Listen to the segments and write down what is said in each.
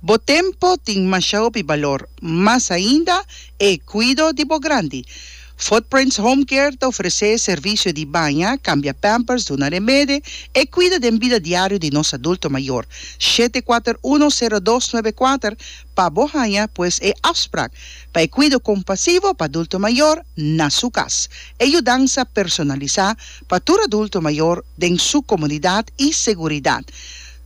Bo tempo tin masha hopi balor, mas ainda e cuido di bo grandi. Footprints Home Care ta ofrece servicio di baña, cambia pampers, duna remede, e cuido den bida diario di nos adulto mayor. Shete kuater uno sero dos nuebe kuater pa bo haña pues e afsprak pa e cuido compasivo pa adulto mayor na su cas. E yudansa personalisa pa tur adulto mayor den su comunidad y seguridad.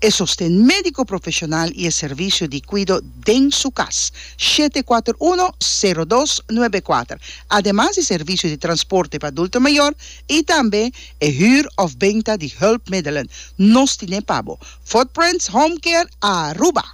E sosten médiko profeshonal i e servisio di kuido den su kas, shete kuater uno, sero dos, nuebe kuater, ademas di servisio di transporte pa adulto mayor i tambe e hür òf benta di hùlpmiddelen, nos tin'é pa bo, Footprints Home Care Aruba.